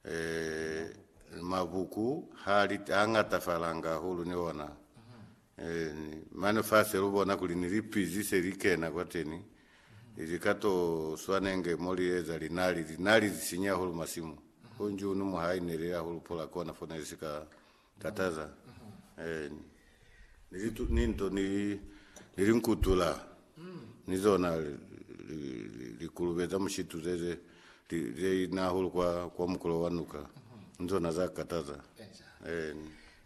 Ee, mabuku ha li, ha ngatafalanga hahulu ni ona. Ee, ni, mane fase lu bona kuli ni lipizi se li kena kwateni, ili ka to swanenge mo li eza linali, linali li sinya hahulu masimu. Ho nji unu mwa haineli hahulu pola kona fo ne li si ka kataza ni litu ni nto ni ni linkutula ni zona likulube za mushitu ze ze ze inahulu kwa kwa mukulo wa nuka ni zona za kataza eh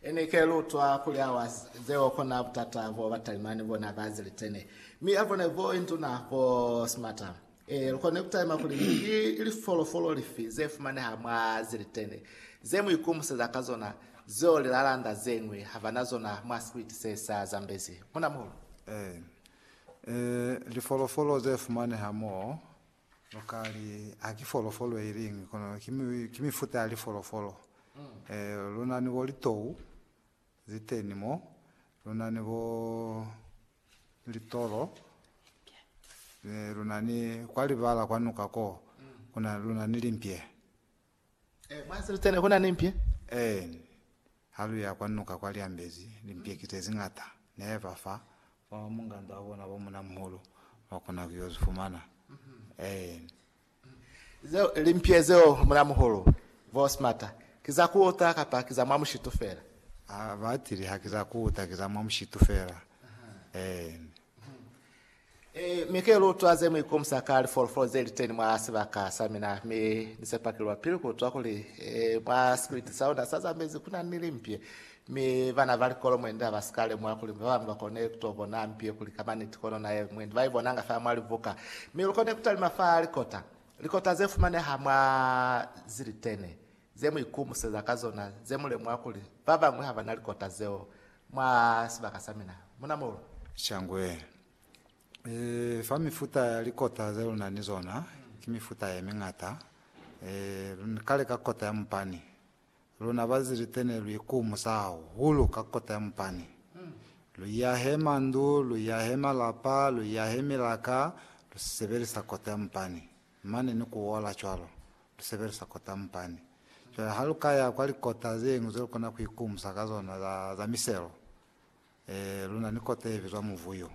ene ke lutwa kuli awa zeo kona butata bo batalimani bona ba zilitene mi abone bo induna bo smata Ee, lu kona ku talima kuli ki lifolofolo lifi ze fumaneha mwa ze litene ze mu ikomuseza ka zona zeo lilalanda ze ñwi ha ba na zona mwa sikwiti se sa zambezi. Munamuhulu. Ee. Ee, lifolofolo ze fumaneha moo, lu ka li ha ki folofolo i liñwi, kono ki, ki mifuta ya lifolofolo. Ee, lu na ni bo litou, Ziteni mo, lu na ni bo litolo, mi lu na ni kwa libala kwa nuka ko, ku na, lu na ni limpye. Eh, mwa Ziteni ku na ni mpye? Eeni. Ha lu ya kwa nuka kwa Lyambezi, limpye ki ze ziñata. Ne ba fa ba munganda wa bona bo munamuhulu, ba kona ku yo zifumana. Eeni. Zeo ili mpye zeo muna muhulu, vo smata. Ki za kuuta kapa ki za mwa mushitu fela? A batili, haki za kuuta, ki za mwa mushitu fela. Eeni. E, mi ke lutwa ze mu ikomusa ka lifolofolo ze li teni mwa sibaka sa mina, mi Ni sepa ki lwa pili kutwa kuli, e, mwa sikiliti sa luna sa za mezi kuna ni limpye. Mi bana ba likolo mwendi ha ba si ka lemuha kuli ba bañwi ba kone ku to bona mpi ye kuli ka maniti kono na ye mwendi ba i bonanga fa mwa libuka. Mi lu kone ku talima fa likota, likota ze fumaneha mwa zilitene ze mu ikumuseza ka zona, ze mu lemuha kuli ba bañwi ha ba na likota zeo mwa sibaka sa mina. Mu na molu? Shangwe. Ee, fa mifuta ya likota ze lu na ni zona, ki mifuta ye miñata. Ee, lu ka leka kota ya mupani, Luna Bazilite ne lu ikumusa hahulu ka kota ya mupani. Lu iyahe mandu, lu iyahe malapa, lu iyahe milaka, lu sebelisa kota ya mupani. Mane ni ku ola cwalo, lu sebelisa kota ya mupani. Cwale ha lu ka ya kwa likota zeñwi ze lu kona ku ikumusa ka zona za, za miselo, eh, lu na ni kota ye bizwa Muvuyu.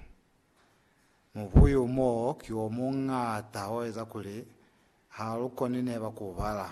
Muvuyu moo ki o muñata o eza kuli ha lu koni neba ku u bala.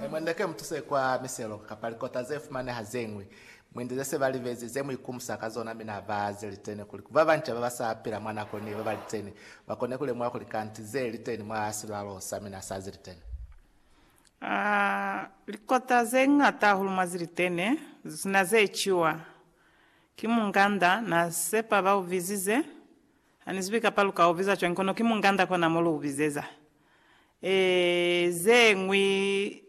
He mwende ke mutuse kwa miselo kapa likota ze fumaneha ze ñwi, mwende ze se ba libezi, ze mu ikumusa ka zona mi na ba ze liteni, kuli ba banca ba ba sa pila mwa nako ni ba ba liteni ba kone ku lemuha kuli kanti ze liteni mwa silwalo sa mina sa ze liteni. A Likota ze ñata hahulu mwa ze liteni ze si na ze ciwa. Ki munganda na sepa ba u bizize. Hanizibi kapa luka ubiza cwañi kono ki munganda kona mo lu ubizeza. Eeh zeñwi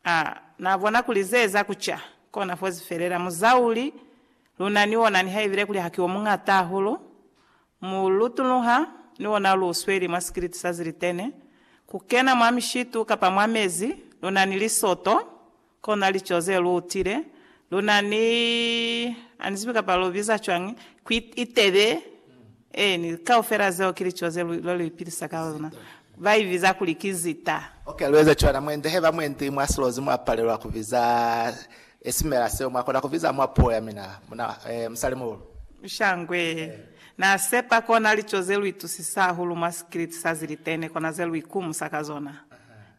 ah na bona kuli ze eza ku ca kona fozi felela muzauli luna ni ona niha ibile kuli haki omuñata hahulu mu lutunuha ni ona lu sweli mwa sikiliti sa zilitene ku kena mwa mishitu kapa mwa mezi luna ni lisoto Kona lico ze lu utile, lu na ni, a ni zibi kapa lu biza cwañi, ku itebe, eeni, kaufela zeo ki lico ze lu, lwa lu ipilisa ka lona. Ba i biza kuli ki zita. Ok, lu eza cwana. Mwendi, haiba mwendi mwa silozi mwa palelwa ku biza esimela seo, mwa kona ku biza mwa puo ya mina, muna, eh, musalimuhulu? Shangwe, Na sepa kona lico ze lu itusisa hahulu mwa sikiliti sa zilitene, kona ze lu ikumusa ka zona.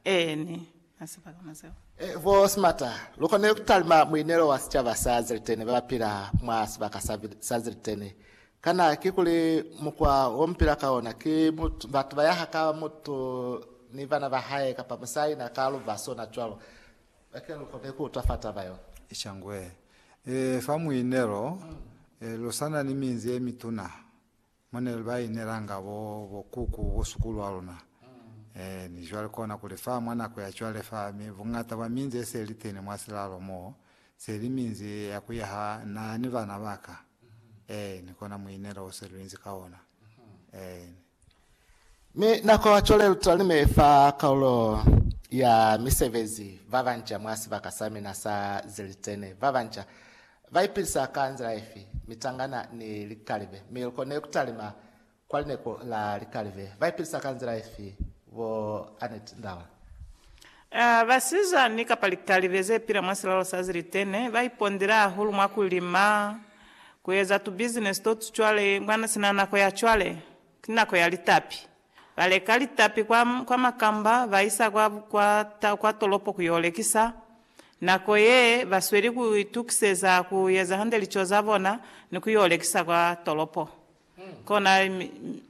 Eeni. Na si palama zeo. Ee, bo Smarter, lu konile ku talima muinelo wa sicaba sa Ziliteni ba ba pila mwa sibaka sa, sa Ziliteni. Kana ki kuli mukwa wo mu pila ka ona ki mutu, batu ba yaha ka mutu ni bana ba hae, kapa musali na ka luba sona cwalo? Bake lu konile ku utwa fa taba yo. Eca ngwe. Ee, fa muinelo, ee, lu sa na ni minzi ye mituna. Mo ne ba inelanga bo, bo kuku, bo sukulu a luna. Ee, ni cwale kona kuli fa mwa nako ya cwale fa, mi buñata bwa minzi ye se li teni mwa silalo mo, se li minzi ya ku yaha na ni bana ba ka. Ee, ni kona muinelo o se lu inzi ka ona. Ee. Mi nako ya cwale lu talime fa kaulo ya misebezi, ba banca mwa sibaka sa mina sa zilitene, ba banca. Ba ipilisa ka nzila ifi? Mitangana ni likalibe. Mi lu kone ku talima kwa lineko la likalibe. Ba ipilisa ka nzila ifi? Bo Annette Ndaula. A Basizani kapa likalibe ze pila mwa silalo sa zilitene ba ipondile hahulu mwa ku lima, ku eza tubizinesi to tu cwale mwa sina nako ya cwale. Ki nako ya litapi. Ba leka litapi kwa, kwa makamba, ba isa kwa, kwa, ta, kwa tolopo ku yo lekisa. Nako ye, ba sweli ku itukiseza ku eza hande lico za bona ni ku yo lekisa kwa tolopo. Kona, mi, mi,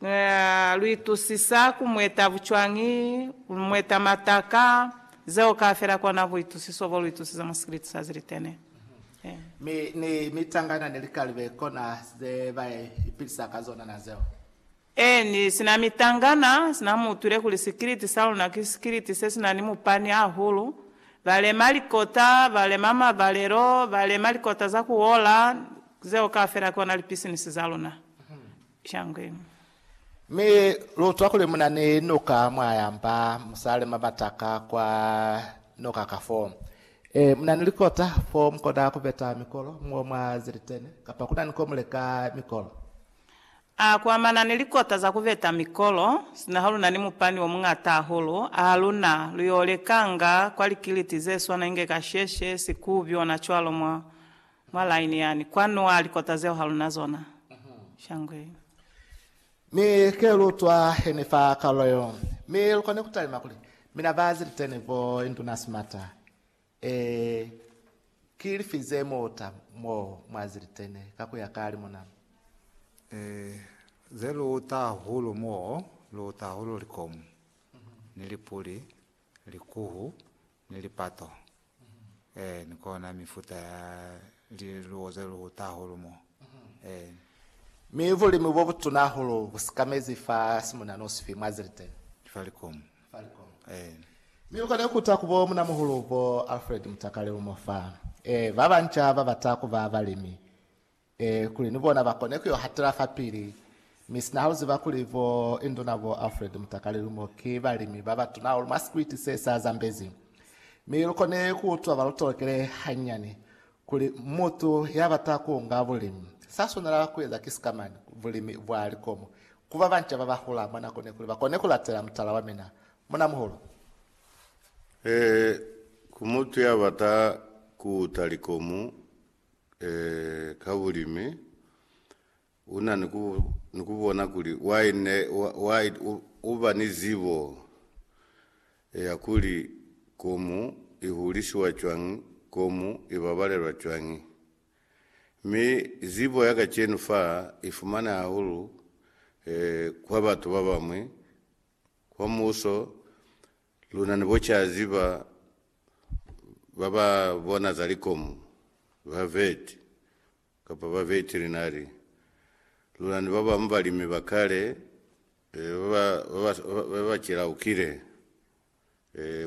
Uh, lu itusisa ku mweta bucwañi, ku mweta mataka, zeo kaafela kona buitusiso bo lu itusisa mwa sikiliti sa zilitene. Mi ni mitangana ni likalibe kona ze ba ipilisa ka zona na zeo. Eeni, sina mitangana, sina mu utwile kuli sikiliti sa luna ki sikiliti se sina ni mupani ahulu. Ba lema likota, ba lema mabalelo, ba lema likota za ku ola, zeo kaafela kona lipisinisi za luna. Shangwenu. Mi lutwa kuli muna ni noka mwa yamba musale mabataka kwa noka ka fo. E, muna ni likota fo mukona kubeta mikolo mo mwa zilitene, kapa kuna ni ko muleka mikolo. A kuamana ni likota za kubeta mikolo, sina ha luna ni mupani o muñata ahulu, a ha luna, lu yo lekanga kwa likiliti ze swana inge kasheshe, sikubi, ona cwalo, mwa. Mwa line yani kwanu wa likota zeo haluna zona shangwe. Mi ke lu twa heni fa kalulo yo, mi lu koni ku talima kuli, Mina ba ziliteni bo induna simata. Ee, ki lifi ze muta mo mwa ziliteni ka ku ya ka limuna? Ee, ze lu uta hahulu mo lu uta hahulu likomu, ni lipuli, likuhu, Ni lipato. Ee, ni kona mifuta ya liluwo ze luhuta hahulu mo. Ee. Mi bulimi bo butuna hahulu bu sikamezi fa simuna nosi fi mwa Zilteni? Ki fa likomu. Fa likomu. Ee. Mi lu kone kuta ku bo munamuhulu bo Alfred Mutakale lumo fa. Ee, ba banca ba bata kuba balimi. Ee, kuli ni bona ba kone ku yo hatela fapili. Mi sina ha lu ziba kuli bo Induna bo Alfred Mutakali Lumo ki balimi ba batuna hahulu mwa sikwiti se sa Zambezi. Mi lu kone ku utwa ba lu tolokele hanyani kuli mutu ya bata ku nga bulimi, sa swanela ku eza ki sikamani, bulimi bwa likomo, ku ba banca ba ba hula mwa nako ne kuli ba kone ku latela mutala wa mina. Munamuhulu. Ee, ku mutu ya bata ku uta likomo, eh, ka bulimi, u na ni ku, ni ku bona kuli why ne, why u, u ba ni zibo eh, ya kuli komu i hulisiwa cwañi, komu i babalelwa cwañi. Mi zibo ya kacenu fa i fumane hahulu eh, kwa batu ba bañwi, kwa muso, Luna ni bo ca ziba ba ba bona za likomu, ba vet, kapa ba veterinari. Luna ni ba bamu balimi ba kale ba ba cilaukile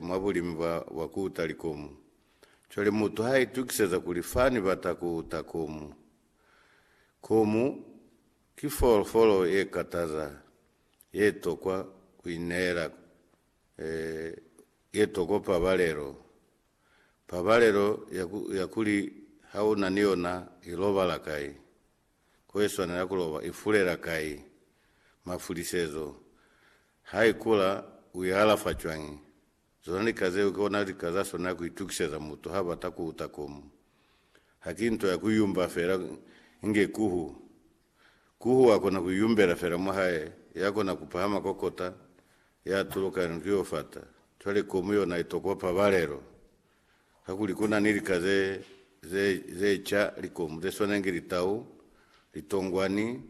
mwa bulimi bwa ku uta likomu. Cwale mutu ha itukiseza kuli, Fa ni bata ku uta komu. Komu ki folofolo ye kataza. ye tokwa ku ineela ye tokwa pabalelo, pabalelo ya kuli ha u na ni yona i lobala kai, ko i swanela ku loba, i fulela kai, mafulisezo, ha i kula, u i alafa cwañi, Zona lika zeo ki ona lika za swanela ku itukiseza mutu ha bata ku uta komu. Ha ki nto ya ku yumba fela inge kuhu. Kuhu wa kona ku yumbela fela mwa hae, ya kona ku pahama kwa kota, ya tuluka ni ku yo fata. Cwale komu yona i tokwa pabalelo. kakuli ku na ni lika ze, ze, ze ca, likomu ze swanengi litau, litongwani,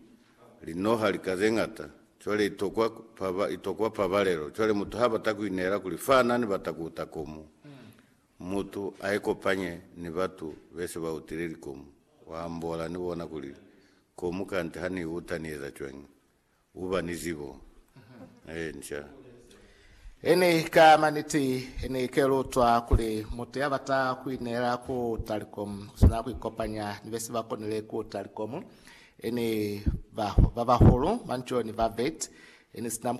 linoha, lika ze ñata. Cwale i tokwa, paba, i tokwa pabalelo. Cwale mutu ha bata ku ineela kuli fana ni bata ku uta komu, mutu a ikopanye ni batu be se ba utile likomu, wa ambola ni bona kuli, Komu kante ha ni i uta ni eza cwañi? Uba ni zibo ye nca. Ini ka maniti Ini ke lutwa kuli mutu ya bata kuineela ku Telecom uswanela kuikopanya ni besi ba konile ku Telecom, ini ba bahulu, manco ni ba vet, ini sina